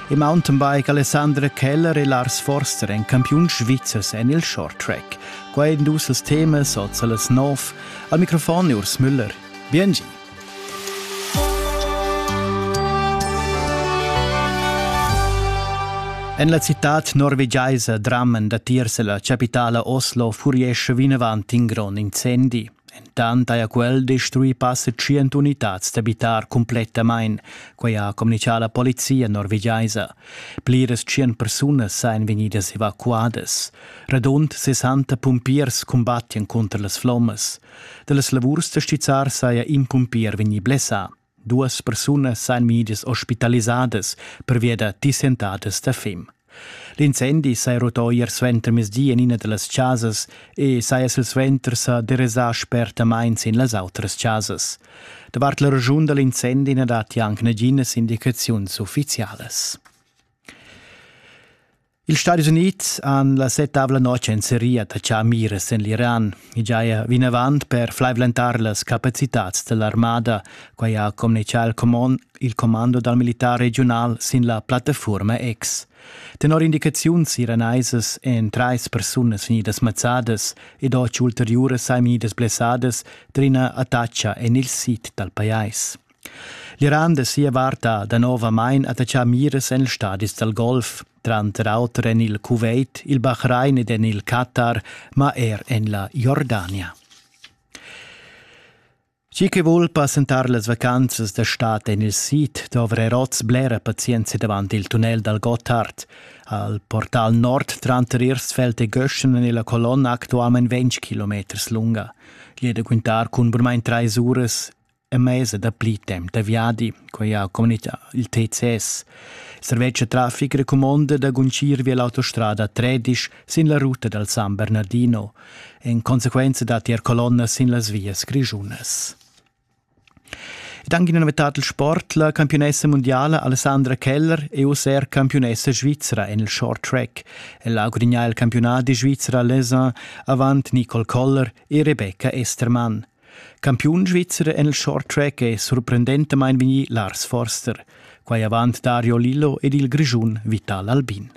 Il mountainbike Alessandra Keller e Lars Forster en campiun svizzers en il short track. Quai en dus els temas oz a las nov. Al microfon è Urs Müller. Biengi! En la citad norvegiaisa Drammen datiers la chapitala Oslo furie vinavant in grond incendi. Entant haja quel destruì passa tschient unitads d'abitar cumplettamain, quai ha communitgà la polizia norvegiaisa. Pliras tschient persunas sajan vegnidas evacuadas. Radund 60 pumpiers cumbattian cunter las flommas. Da las lavurs da stizzar saja in pumpier vegnì blessà. Duas persunas san migias ospitalisadas pervia da dissentadas da fem. L'incendi saja rutà ier suenter mezdi en ina da las chasas e saja silsuenter sa derasà spertamain sin las autras chasas. Davart la raschun da l'incendi na datti anc naginas indicaziuns uffizialas. Ils Stadis Unids han la settavla notg en seria da char miras en l'Iran. I giaja vinavant per flaivlentar las capacitads dell'armada. Quai ha communicà il, comond, il commando dal militar regional sin la plattaforma X. Tenor indicaziuns iraneisas èn trais persunas vegnidas mazzadas ed otg ulteriuras saimidas blessadas d'ina attacca en il sid dal pajais. L'Iran da sia vart ha danovamain attaccà miras en ils stadis dal Golf, tranter auter en il Kuwait, il Bahrain ed en il Qatar, ma er en la Jordania. Chi che vul passentar las vacanzas da stad en il sid dovra oz blera pazienza davant il tunnel dal Gotthard. Al portal nord tranter Irsfeld e Göschen en la colonna actualmain 20 km lunga. Jeder quintar cun burmain trais uras e mesa dapli temp da viadi, quai ha communitgà il TCS. Servetsch traffic recumonda da guncir via l'autostrada 13 sin la ruta dal San Bernardino. In conseguenza datti er colonnas sin las vias grischunas. Ed anche in novetat il sport, la campionessa mondiale Alessandra Keller è user campionessa svizra en il short track. Ella ha gudignato il campionat di Svizzera Les Uns avant Nicole Koller e Rebecca Estermann. Campiun svizzer en il short track è surprendentamain vegnì Lars Forster, quai avant Dario Lillo ed il Grischun Vital Albin.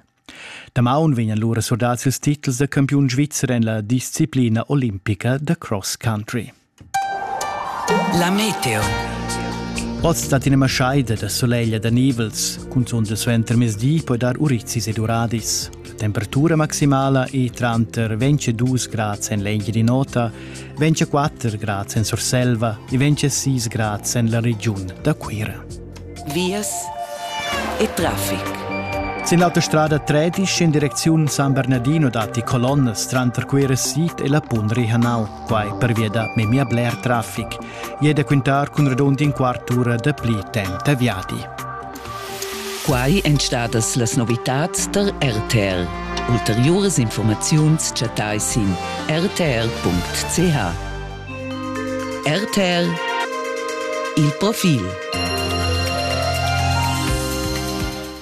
Damaun vegnan lura surdads ils titels da campiun svizzer en la disciplina olimpica da cross country. La meteo. Oz dat ina maschaida da soleglia da nivels, cunzunt suenter mezdi poi dar urizis ed uradis. temperatura maximala è tranter 22 grads en l'Engiadin'Ota, 24 grads en Surselva e 26 grads en la regiun da Cuira. Vias e traffic. Sin l'autostrada 13 in direcziun San Bernardino datti colonnas tranter Cuira Sid e la Pun Rihanau, quai pervia da memia bler traffic. E da quintar cun radund in quart ura da pli temp da viadi. Quai èn stadas las novitads tar RTR. Ulteriuras informaziuns chattai sin rtr.ch. RTR Il profil.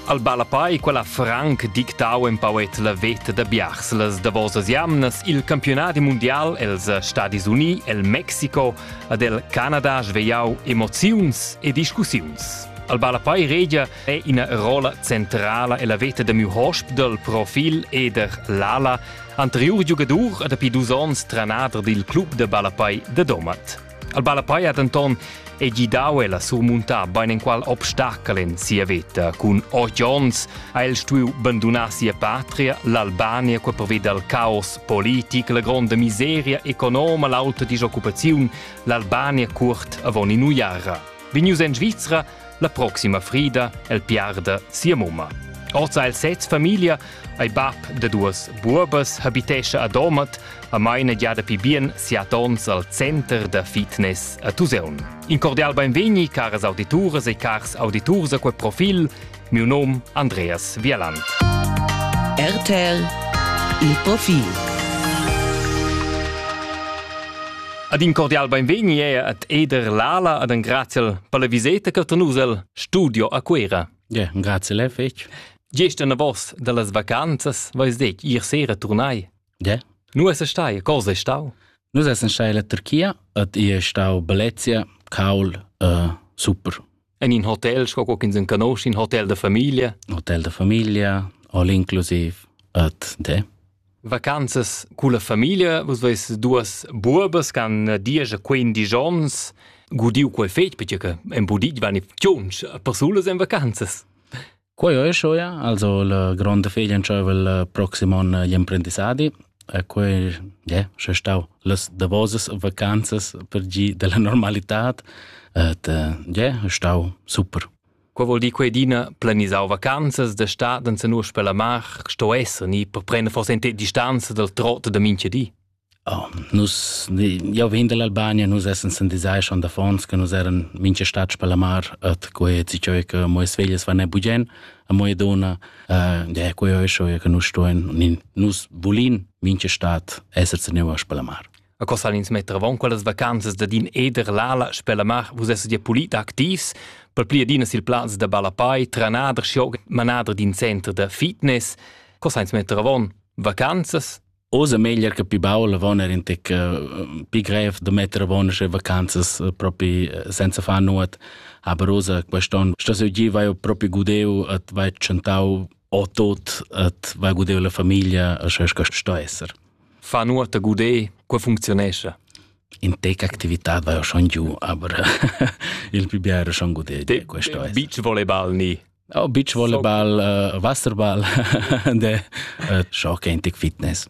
Al Balapai quella franc dictau empauet la veta da biars las davosas jamnas il campionat mundial els Stadis Uni, el Mexico, ad el Canada svegliau emoziuns e discussiuns. Al Ballapei Regia è ina rolla centrala e la veta da miu hosp dal profil eder l'ala, anteriur giugadur e dapi dus onns tranader dil club da ballapei da Domat. Al Ballapei ha denton e gidau el a surmuntar beinenqual obstacle en sia veta. Cun otg onns ha el stuiu bandunar sia patria, l'Albania, qua preveda il caos politic, la gronda miseria economa, l'auta disoccupaziun, l'Albania curt avon in'uiara. Vegnius en Svizra la proxima frida el piarda sia mumma. Oza el sez famiglia ei bab de duas buobas habitescha a Domat a maina gia dapi bien siat ons al center da fitness a Tuseun. In cordial beinvegni, caras audituras e cars auditurs a quel profil Miu nom Andreas Wieland. RTL Il Profil Ad in cordial beinvegni e ad Eder Lala ad un graziel per la viseta che tenus el studio a Cuera. Ja, grazie lei fetg. Gest en vos dallas vacanzas vais dec ir sera turnai Nu es stai? Cosa è stau? Nus essan stai illa Turchia ed i è stau bellezia, caul, uh, super. En in hotel, sco ch'ins en conosce, in hotel da famiglia? Hotel da famiglia, all inclusiv, ed de. Vacanzas con la famiglia, vus veis duas buobas che han dieci 15 onns gudiu quel fetg perché che en budit van i tschunch persulas en vacanzas. Quei ei schuia, also la gronda figlia entscheiva il proxim onn gli emprendissadi e quei, yeah, sche stau las davosas vacanzas per gi della normalitad, et yeah, stau super. Quei vuol dir quei dina planisau vacanzas da stad en senus per la mar sto esser ni per prender forse in distanza dal trot da mincha di. Oh, nus, jau vegn dall'Albania, nus essens in disai schon da fons, che nus eran mincha stats per la mar, et quei ti cheu che moes veglias van e bugen, a moia donna, uh, de quei ho scho che nus stoen, nus volin mincha stat esser tenevas per la mar. A cosa ins metter avon quellas vacanzas da din eder l'ala sper la mar, vus esset ja pulit activs, per pli adina sil plaz da balapai, tranader, schioga, manader d'in center da fitness. Cosa ins metter avon? Vacanzas? Oz è meglier che pi baul avon er in tec uh, pi grev da metter avon sche vacanzas uh, propi uh, senza far nuot. Aber oz quest'on sto se gi vai propi gudeu et vai chantau o tot et vai gudeu la famiglia a sche sto esser. Fa nuot a gudeu, qua funzionesce. In tec actività vai schon giù, aber il più biero schon gudeu. Te, questo beach volleyball ni Oh, beach volleyball, uh, wasserball de uh, schock antic fitness.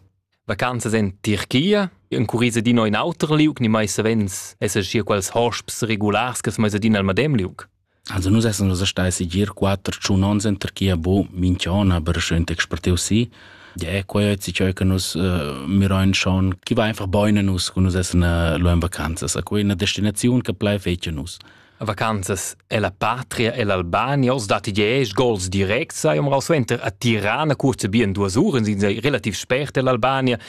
Vacanzas en Tirchia, en curisa di in auter liug, ni mai savens esser schier quels hosps regulars che mai adina al madem liug. Also nus essen nus stai si gir quatter tschun ons in Tirchia bo minchiona aber schön expertiu si. Ja, quei hat sich ja che nus uh, mir ein schon chi va einfach beune nus, kun nus essen uh, lo in vacanzas. A quei una destinazione che plai fetje nus. vacanzas ella patria e l'Albania oz datti diesch gols directs sai umrau suenter a Tirana kurze bien duas uren sind sei relativ spert l'Albania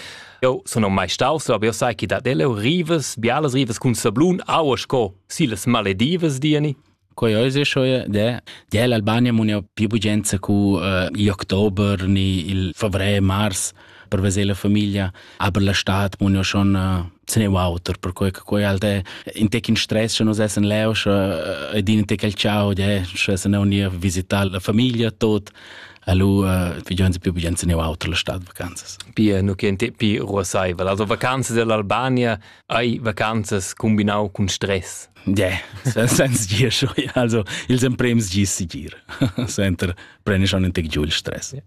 Eu sun mai staus, aber eu sai chi dat el, eu rivas, bialas rivas cun sablun, aua sco si las maledivas, diani. Quai eu se schoie de de l'Albania mun eu più bugenza cu uh, i october ni il favrer mars per veser la famiglia, aber la stat mun ja schon äh, se ne auter per quei che quei alte in tec in stress che nos essen leo sche ed in tec al ciao de sche se ne uni a visitare la famiglia tot Allo uh, vigenza più vigenza ne auter la stad vacanzas. Pia nu che te pi ruosaivel. Also vacanzas dell'Albania hai vacanzas combinau cun stress. Yeah, senza dir schon. Also ils emprems gis si gir. Senter prende schon un tec giù il stress. Yeah.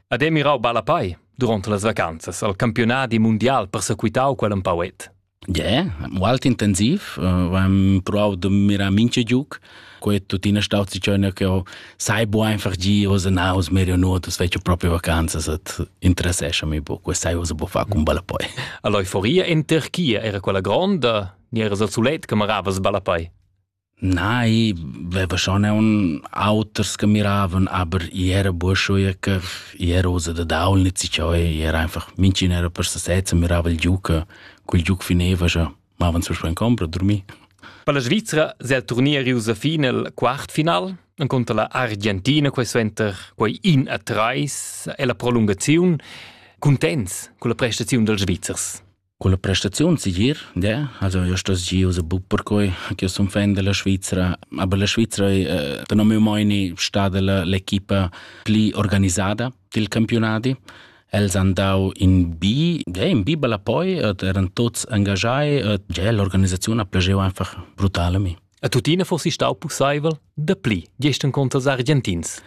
Ed ei mirau ballapei duront las vacanzas al campiunadi mundial persequitau quel empau et. Yeah, molt intensiv. Am prov de mirar minche giuc. Quei tuttina staut si cione che ho sai bu einfach gi os naus merio nuotus fece proprio vacanzas et interessescha mi bu. Quei sai os bu fa cum ballapei. All'euforia in Turchia era quella gronda, ni era sul sulet che maravas ballapei. Nei, veva schon aun auters che miravan, aber i era burschuia che i era usa da daul nit si ciò e era einfach minchin era per sesez e mirava il giuca. Cul giuc fineva scha mavan sul span compra, durmir. Per la Svizra se il turnier riusa fin al quartfinal incontra la Argentina questo enter quei in a treis e la prolungaziun contents con la prestaziun dels Svizzers. Culla prestaziun segir, de, also io stos giu se buc perquei ch'io sun fan della Svizra, aber la Svizra ei eh, tenor miu meini stada la l'equipa pli organisada dil campionadi. Els han dau in bi, ja, in bi bella poi, et eran tots engagai, et ja, l'organisaziun ha plageu einfach brutal a mi. E tuttina fossi stau pusseivel, da pli, gestern contra els argentins.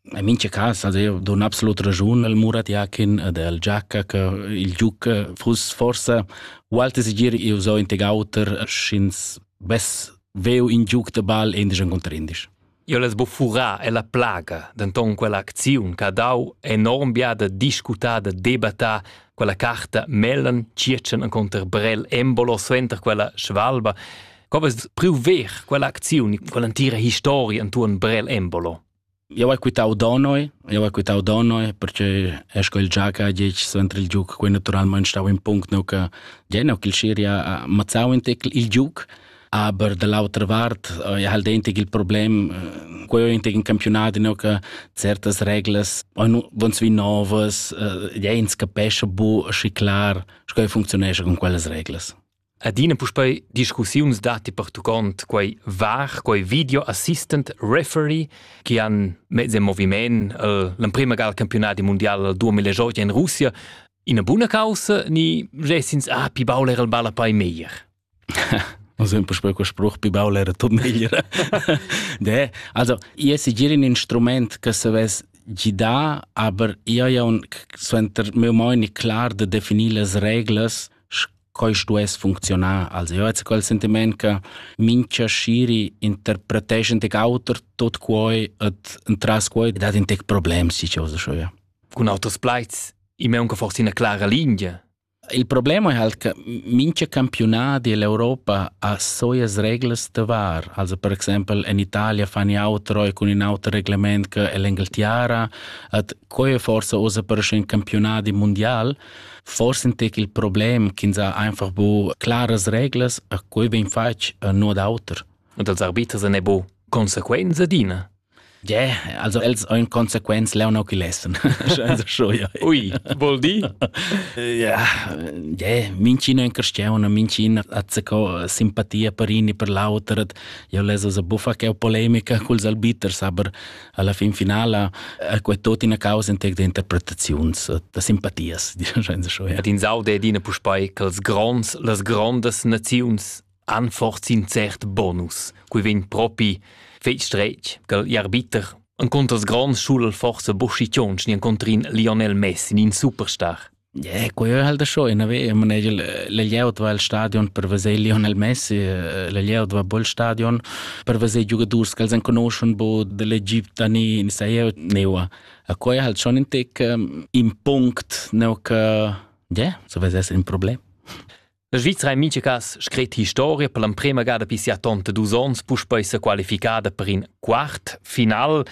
In mincha cas ad eu don absolut raschun al Murat Jakin ed al Giacca che il giuc fuss forsa ualti segir eu so in teg auter sch'ins vess veu in giuc de ball indisch conter indisch. Io l'es bo furà e la plaga, denton quella acziun che ha dau enorm bia da discutar, da debattar, quella carta Mellen circen en conter Brell Embolo suenter quella svalba. Co vest priu ver quella acziun, quella entira historia intuorn Brell Embolo? Eu hai quitau Donoi, eu hai quitau Donoi perche è sco il giaca ha ditg suenter il giuc, quei naturalmein stau in punct neu che ge neu ch'il Siria ha mazzau in tec il giuc. Aber dall'autra vart eh, ha el dentig il problem, eh, quei ho intig in campionat neu che certas reglas van svi novas, eh, ja ins capescha bu schi clar, sco ei funczionescha con quellas reglas. Adina puspei discussiuns datti pertuccont quei var, quei video assistant referee che han mezz in moviment eh, l'emprema ga al campionati mondial 2018 in Russia. Ina buna causa ni gessins ah pi baul era il balla pai meglier? Also un po' quel spruch pi baul era tot meglier. De, also io se giri un instrument che se ves gida, aber io ja un suenter mio moni clar de definir las reglas Quai stuess funcziunar als euts quel sentiment che mincha sciri interpreteschan tec auter tot quoi et entras quoi dat in tec problems si chose scho ja. Cun auters plaids, i m'è unca forse ina clara linea. Il problema è halt che mincha campionati dell'Europa ha soias reglas da var. Also per exempel in Italia fan i outro e con in auter reglement che l'Engeltiara, et quei forse osa per un campionati mondial, Forsentig il problem ch'ins ha einfach bu claras reglas a quei vegn fatg a nuot auter. Und als arbiters ne bo consequenze adina. Yeah, also els ein consequenz leu no chi lessen. Also schon ja. Ui, vuol di? Ja, yeah, mincin ein cristiana, mincin hat co simpatia per in e per l'auter. Io leso sa buffa che polemica culs arbiters, aber alla fin finala è quei tot ina causa entec de interpretaziuns da simpatias ed in saude ed ina puspei che els gronds las grondas naziuns anforzin cert bonus cui vegn propi fei strech che arbiter en conters grands schul forse boschi tionch ni encontrin Lionel Messi in superstar Yeah, quei ei halt schon in haver, man ei la glieud va el stadion per veser Lionel Messi, eh, la glieud va bol stadion per veser giugadurs che els enconoschon bod dell'Egipto ni in sai eu neua. A quei halt schon in tec um, in punct neu che yeah, so vesess in problem. La Svizra ha en mintga cas scrit historia per l'emprema gada per sia tonta dus onns puspei sa qualificada per in quart final.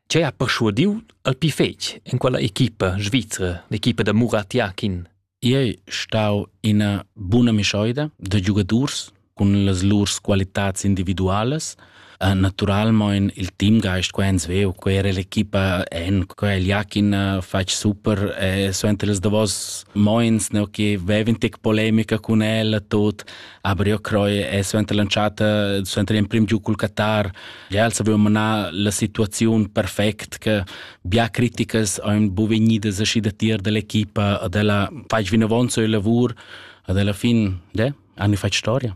Ce ha perschuadiu al pi fetg en quella equipa svizra, l'equipa da Murat Yakin? Ei stau ina buna mischoida da giugadurs cun las lur qualitads individualas Uh, naturalmein il teamgeist qua ins veu quera l'equipa en quel Jakin uh, fatg super e so entre les davos moins ne che veven tec polemica con el tot aber io croi e so entre lanciata so entre in prim giu col Qatar ja els avevo manar la situazione perfect che bia criticas ein bu vegnidas aschi da tier dell'equipa a della fatg vinavon so il lavor ad alla fin de hanno fatto storia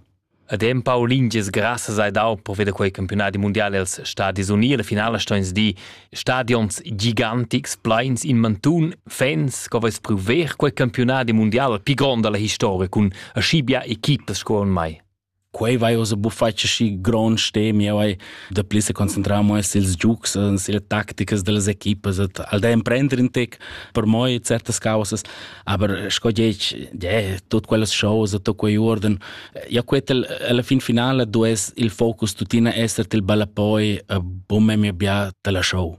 Ed empau lingias grassas hai dau per veder quei campiunadi mundial els Stadis Uni. La finala sto ins dir stadions gigantics, pleins in mantun, fans che veis priu ver quei campiunadi mundial più grond dalla historia cun aschi bia equipas sco en mai. Quei vai osa bufatg aschi grond stemi, vai da pli se concentrar mo sils giugs, sille tacticas dellas equipas, et al da emprender in tec per moi certas causas. Aber sco dieci, de, tut quellas cose, tot quei orden, ja quetel alla fin finale du es il focus tutina esser til balapoi a bumme mi bia tala show.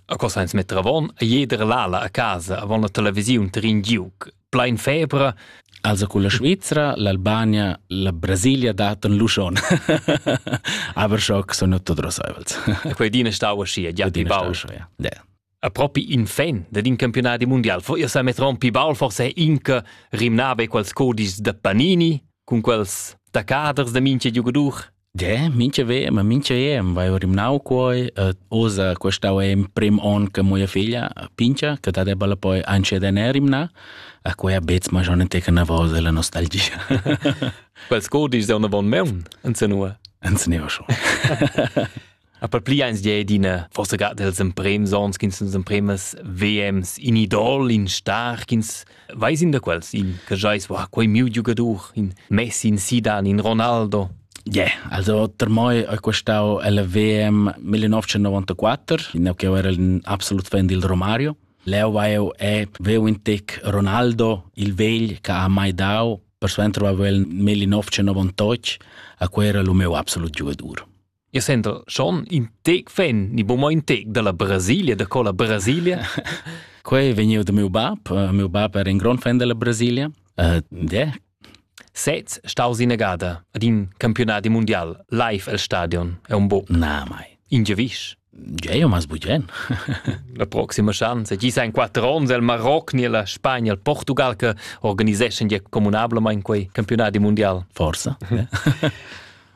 A cosa ins metter avon, a jeder lala a casa avon la televisiun trin giuc. Plein febra. Also con la Svizzera, l'Albania, la Brasilia daten luschon. Aber schock sono tot rosaivels. Quei dina stau ascia, ja, pi bau. Ja. Yeah. A propi in fan dad in campiunadi mundial fo ir sa metron pi baul forse inca rimnave quels codischs da Panini cun quels taccaders da mincha giugadur. Ja, mincha vem, ma mincha em vai rimnau quoi, uh, usa questau em prim on che mia figlia pincha, che da debba poi anche da ne rimna, a quei a bets ma schon teca na vosa la nostalgia. Quels codischs è una von meun, anze nur. Anze ne schon. A per pli eins di d'ina forsa ga dels emprems ons ch'ins nos empremas VMs in idol, in star, ch'ins veis in da quels, in che jais, wow, quei miu giugadur, in Messi, in Zidane, in Ronaldo. Yeah, also per me è questo il VM 1994, in che era un absolut fan del Romario. Leo eu e veu in tec Ronaldo, il vegl che ha mai dau, per suenter va il 1998, a quel era il meu absolut giugadur. Il center schon in tec fan ni buca in tec dalla Brasilia da cola Brasilia. Quei vegniu da miu bab. Uh, miu bab era in grand fan della Brasilia. Uh, de. Sez staus innegada ad in campionati mondial live el stadion è un bo. Na mai. In gewisch. Gei mas bugen. la proxima chance. Gi sa in quattro ons el Marocco ni la Spagna, il Portugal che organiseschan ja communablament quei campionati mondial. Forsa.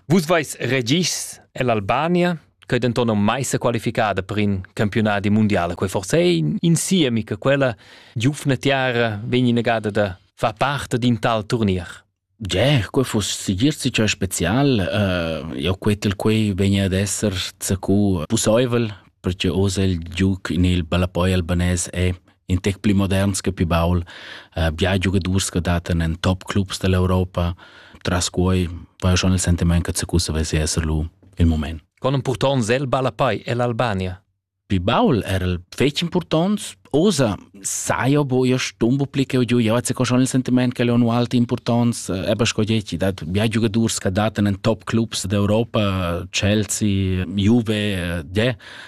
Vus veis regis ell'Albania, che denton non mai se qualificada per in campionati mondiale, quei forse è in siemi che quella giufna tiara vegni negata da fa parte di un tal turnier. Ger, quei foss sigir sicher spezial. Uh, io quetel quei vegni ad esser zacu pusoivel, perché osa il giuc in il ballapoi albanese è in tec pli moderns che pli baul, uh, bia giugadurs che datan en top clubs dell'Europa. Tras quei va schon il sentiment che se cussa vesi esser lu il moment. Con un purtons el Balapai ell'Albania? Pi baul era el fetg importants, osa saio bo io stumbo pli che giu, io se schon il sentiment che le unu alti importants, eba scoieti, dat bia giugadurs che datan in top clubs d'Europa, Chelsea, Juve, de,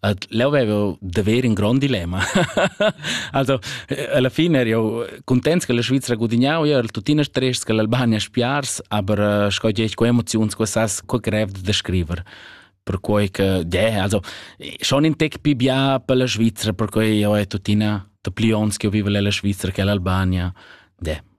Ed leu avevo da ver in grond dilemma. also, alla fine ero io contents che la Svizzera gudignau, io ero tuttina stress che l'Albania spiars, aber sco eh, dici, co emozioni, co sas, co grev da scriver per quei che, yeah, also, schon in tec più bia per la Svizzera, per quei io è tuttina da pli ons che io vivo nella Svizzera che l'Albania. Yeah.